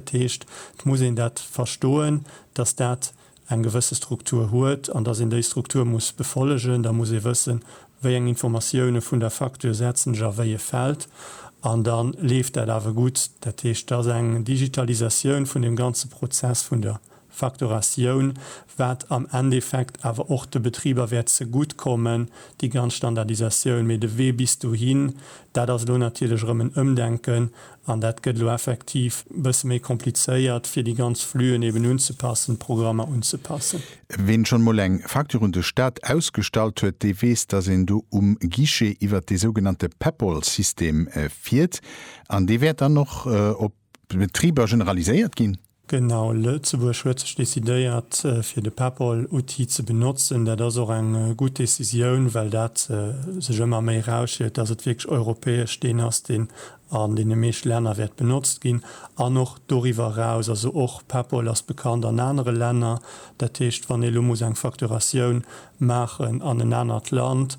Dat heescht, et muss een dat verstoen, dass dat eng gewësse Struktur huet an dass een déi Struktur muss befollegen. Da muss ee wëssen, wéi eng Informatioune vun der Facture setzen ech a wéi e Feld. An da leeft dat awer gutt. Dat heescht, et ass eng Digitalisatioun vun deem ganze Prozess vun der Facturatioun, wat am Endeffekt awer och de Betriber wäert zegutt kommen, déi ganz Standardisatioun. Mee de Wee bis dohin, dat ass elo natierlech erëm en Ëmdenken an dat gëtt elo effektiv e bësse méi komplizéiert, fir déi ganz Flüen eben unzepassen, d'Programmer unzepassen. Ween schonn emol eng Facture un de Staat ausgestallt huet, dee weess, dass een do um Guichet iwwert dee sougenannte Peppol-System fiert an dee wäert dann och op Betriber generaliséiert ginn? Genau, Lëtzebuerg huet sech decidéiert fir de PEPP-Outil ze benotzen. Dat ass och eng gutt Decisioun, well dat sech ëmmer méi erausstiellt, dass et wierklech europäesch deen ass, deen an deene meeschte Länner wäert benotzt ginn an och doriwwer eraus. Also och PEPP ass bekannt an anere Länner. Dat heescht, wann ee lo muss eng Facturatioun maachen an en anert Land,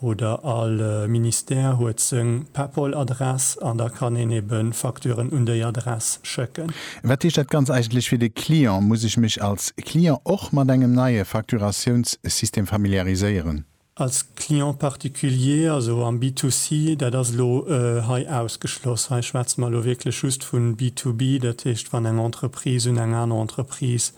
oder all Ministère huet seng Paypal Adress an da kann een ebe Facturen un déi Adress schécken. Wat heescht dat ganz eigentlech fir de Client? Muss ech mech als Client och mat engem neie Facturatiounssystem familiariséieren? Als Client particulier, also am B2C, dat ass elo hei ausgeschloss. Hei schwätze mer elo wierklech just vu B2B, dat heescht wann eng Entreprise un eng aner Entreprise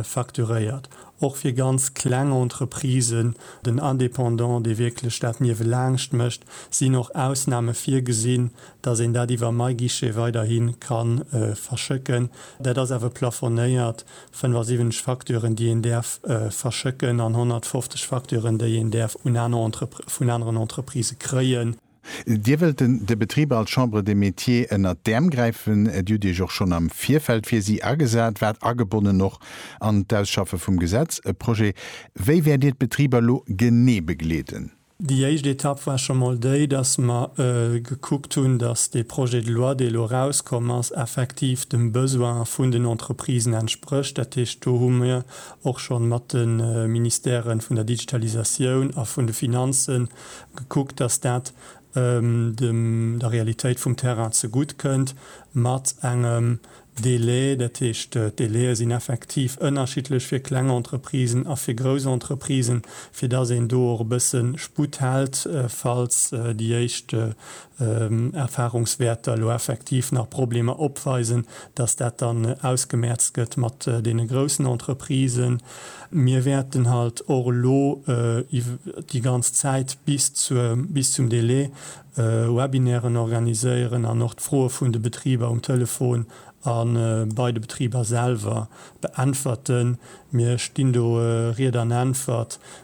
facturéiert, och fir ganz kleng Entreprisen, den Indépendant, dee wierklech dat niewelaangscht mécht, sinn och Ausname virgesinn, dass een dat iwwer MyGuichet weiderhi ka verschécken. Dat ass awer plafonéiert, 75 Facturen, déi een däerf verschécken an 150 Facturen, déi een däerf vun aneren Entreprise kréien. Dir wëllt den de Betriber als Chambre des Métiers ënnert d'Äerm gräifen. Dir hutt Iech och schonn am Virfeld fir si agesat, waart agebonnen och an d'Ausschaffe vum Gesetz, e Projet. Wéi wäert Dir d'Betriber elo genee begleeden? Déi éischt Etapp war scho mol déi, dass mer gekuckt hunn, dass dee Projet de loi, dee elo erauskomm ass, effektiv dem Besoin vun den Entreprisen entsprécht. Dat heescht, do hu mir och schonn mat de Ministèren vun der Digitalisatioun a vun de Finanzen gekuckt, dass dat dem der Realitéit vum Terrain zegutt kënnt, mat engem Délai, dat heescht d'Délaie sinn effektiv ënnerschiddlech fir kleng Entreprisen a fir grouss Entreprisen, fir dass een do och e bësse Sputt hält, falls déi éischt Erfahrungswärter elo effektiv nach Problemer opweisen, dass dat dann ausgemerzt gëtt mat deene groussen Entreprisen. Mir wäerten halt och elo déi ganz Zäit bis zur, bis zum Délai Webinairen organiséieren an och d'Froe vun de Betriber um Telefon a bei de Betriber selwer beäntwerten. Mir stinn do Ried an Äntwert.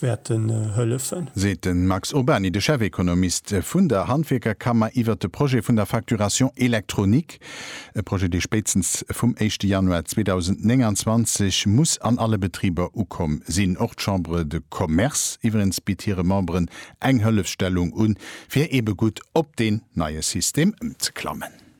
wäerten hëllefen. Seet de Max Urbany, de Chefekonomist vun der Handwierkerkammer iwwert de Projet vun der Facturation électronique. E Projet, dee spéitstens vum éischte Januar 2029 muss an alle Betriber ukomm sinn. Och d'Chambre de Commerce iwwerens bitt hire Memberen eng Hëllefsstellung un, fir eebe gutt op deen neie System ëmzeklammen.